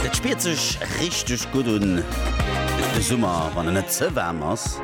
Et spiert sech richteg gutt un, de Summer, wann en net ze waarm ass.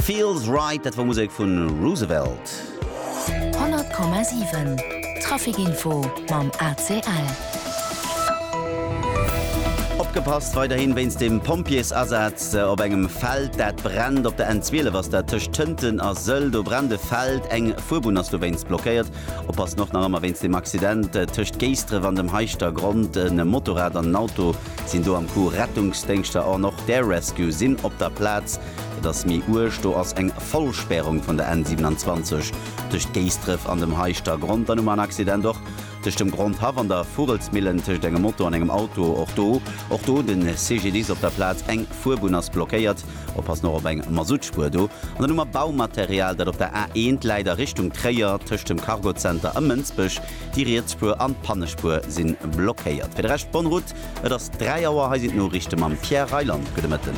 Feels Right, dat war Musek vu Roosevelt. 100,7 Traficinfo mam ACL. Opgepasst weiderhin wéinst dem Pompjeesasaz op engem Feld dat brennt. Op der N12 ass dat tëscht Tënten a Sëll, do brennt e Feld. Eng Fuerbunn ass dowéinst blockéiert. Oppassen och nach ëmmer wéinst dem Accident tëscht Géisdref an dem Heischter Grond. E Motorrad an en Auto sinn do am Coup. Rettungsdéngschter an och d'Air Rescue sinn op der Plaz. Et ass méi uerg, do ass eng Vollspärung vun der N 27 tëscht Géisdref an dem Heischter Grond. Dann hu mer en Accident och tëscht dem Grondhaff an der Vugelsmillen, tëscht engem Moto an engem Auto. Och do, och do de CGDIS op der Plaz. Eng Fuerbunn ass blockéiert. Op ass nach op eng Masuttspuer do. An dann hu mer Baumaterial, dat op der A 1 läit a Richtung Tréier, tëscht dem Cargozenter a Mënsbech. Déi riets Spuer an d'Pannespuer si blockéiert. Fir de Rescht bonne route. Et ass 3 Auer. Hei sinn d'Noriichte mam Pierre Reyland. Gudde Mëtten.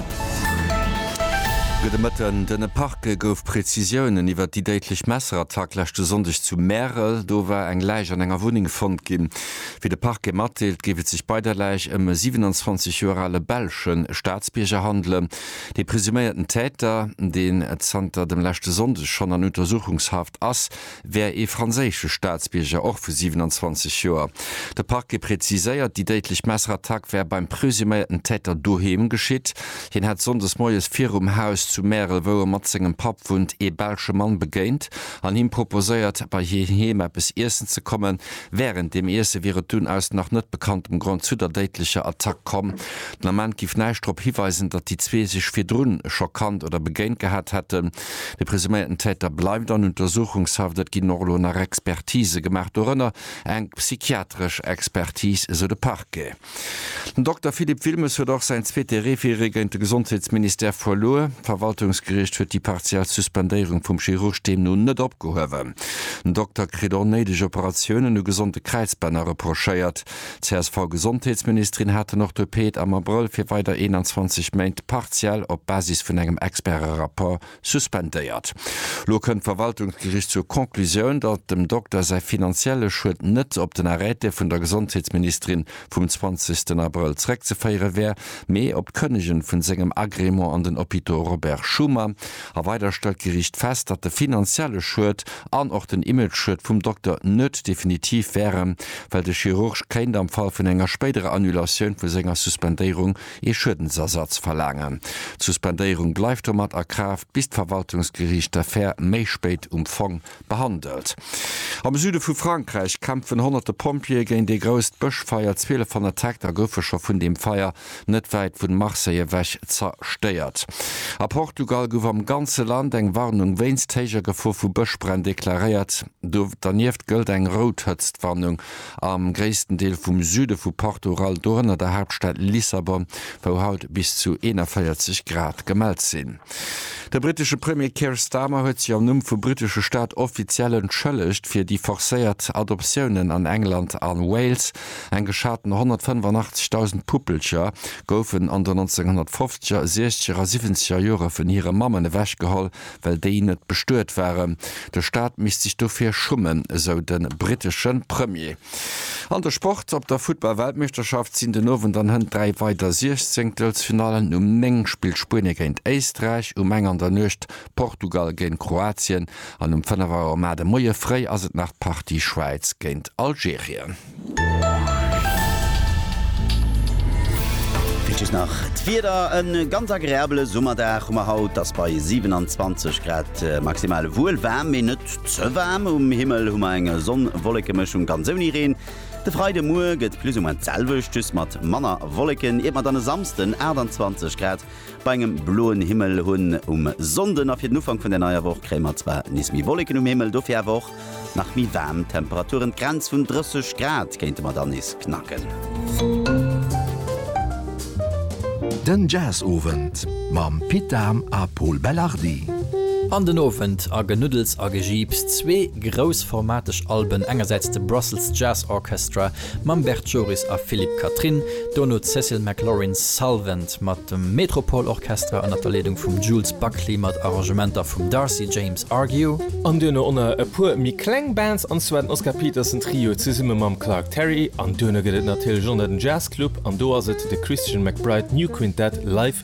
Gudde Mëtten. Den Parquet gouf Prezisiounen iwwert déi déidlech Messerattack leschte Sonndeg zu Märel. Do war eng Läich an enger Wunneng fonnt ginn. Wéi de Parquet matdeelt, géif et sech bei der Läich ëm e 27 Joer ale belsche Staatsbierger handelen. De presuméierten Täter, deen zanter dem leschte Sonndeg schonn an Untersuchungshaft ass, wär ee franséische Staatsbierger, och vu 27 Joer. De Parquet präziséiert, déi déidlech Messerattack wär beim presuméierten Täter doheem geschitt. Hien hätt sonndes moies virum Haus zu Märel, wou e mat sengem Papp wunnt, ee belsche Mann begéint an him proposéiert, bei hien heem eppes iessen ze kommen. Wärend dem Iesse wier et dunn aus nach net bekanntem Grond zu der déidlecher Attack komm. Den Ament géif näischt drop hiweisen, datt déi zwee sech virdrun scho kannt oder begéint gehat hätten. De presuméierten Täter bleift an Untersuchungshaft. Et ginn och elo nach Expertise gemaach, dorënner eng psychiatresch Expertis, esou de Parquet. Den Dokter Philippe Wilmes huet och säin zweete Référé géint de Gesondheetsministère verluer. D'Verwaltungsgeriicht huet déi partiell Suspendéierung vum Chirurg deemno net opgehuewen. Den Dokter kritt onnéideg Operatiounen u gesonde Kräizbänner reprochéiert. D'CSV-Gesondheetsministerin hat den Orthopäd am Abrëll fir weider 21 Méint partiell op Basis vun engem Experte-Rapport Suspendéiert. Lo kënnt d'Verwaltungsgericht zur Conclusioun, datt dem Dokter säi finanzielle Schued net op den Arrêté vun der Gesondheetsministerin vum 20. Abrëll zeréckzeféiere wär, mee op d'Kënnegen vun sengem Agrément an den Hôpitaux Robert Schuman. A weider stellt d'Gericht fest, datt de finanzielle Schued an och den Image-Schued vum Dokter net definitiv wären, well de Chirurg kéint am Fall vun enger spéiderer Annulatioun vu senger Suspendéierung ee Schuedensersatz verlaangen. D'Suspendéierung bleift domat a Kraaft, bis d'Verwaltungsgeriicht d'Affär méi spéit um Fong behandelt. Am Süde vu Frankräich kämpfen honnerte Pompjeeë géint ee grousst Bëschfeier. 1200 Hektar goufe scho vun deem Feier net wäit vun Marseille ewech zerstéiert. A Portugal gouf am ganze Land eng Warnung wéinst héijer Gefor vu Bëschbränn deklaréiert. Donieft gëllt eng rout Hëtztwarnung. Am gréissten Deel vum Süde vu Portugal, dorënner der Haaptstad Lissabon, wou haut bis zu 41 Grad gemellt sinn. De brittesche Premier Keir Starmer huet sech am Numm vum brittesche Staat offiziell entschëllegt fir déi forcéiert Adoptiounen an England a Wales. Eng geschaten 185.000 Puppelcher goufen an den 1950er, sechzeger a siwwenzeger Jore vun hire Mammen ewechgeholl, well déi net bestuet waren. De Staat misst sech dofir schummen, esou de brittesche Premier. An de Sport, Op der Futtball-Weltmeeschterschaft sinn den Owend an hënt dräi weider Siechzéngtelsfinallen. Um 9 spillt Spuenie géint Éisträich, um eng an der Nuecht Portugal géint Kroatien an um 5 Auer mat de Moie fréi ass et nach d'Partie Schwäiz géint Algerien. Wichteg nach d'Wieder, E ganz agreabele Summerdag hu mer haut, et ass bei 27 Grad maximal wuel waarm, mee net ze waarm. Um Himmel hu mer eng Sonn-Wolleke-Mëschung, ganz ouni Reen. De Freidemuer gëtt plus ou moins d'selwecht, just mat manner Wolleken, iert mer dann e Samsden 28 Grad bei engem bloen Himmel hunn. Um Sonnden a fir den Ufank vun der neier Woch kréie mer zwar nees méi Wolleken um Himmel, dofir awer och Nach méi waarm Temperaturen, d'Grenz vun 30 Grad kéinte mer dann nees knacken. Den Jazzowend mam Pit Dahm a Pol Belardi. An den Owend a Genuddels a Gejiips, zwee groussformateg Alben, engersäits de Brussels Jazz Orchestra, mam Bert Joris a Philippe Catherine, dono d'Cecil McLorin Salvant mat dem Metropole Orchestra ënner der Leedung vum Jules Buckley mat Arrangementer vum Darcy James Argue, an duerno onner e puer méi kleng Bands, an zwar den Oscar Peterson Trio zesumme mam Clark Terry, an duerno gëtt et natierlech onner den Jazz Club, an do ass et de Christian McBride New Quintet live.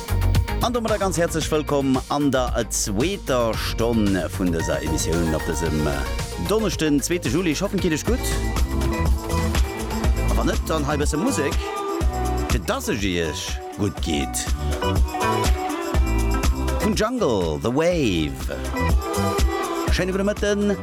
An domadder ganz häerzlech wëllkomm an der zweeter Stonn vun dëser Emissioun op dësem Donneschden, zweete Juli. Ech hoffen, et geet Iech gutt. A wann net, dann hei e bësse Musek, fir dass ech Iech gutt geet. Vun Jungle, The Wave. Schéine gudde Mëtten.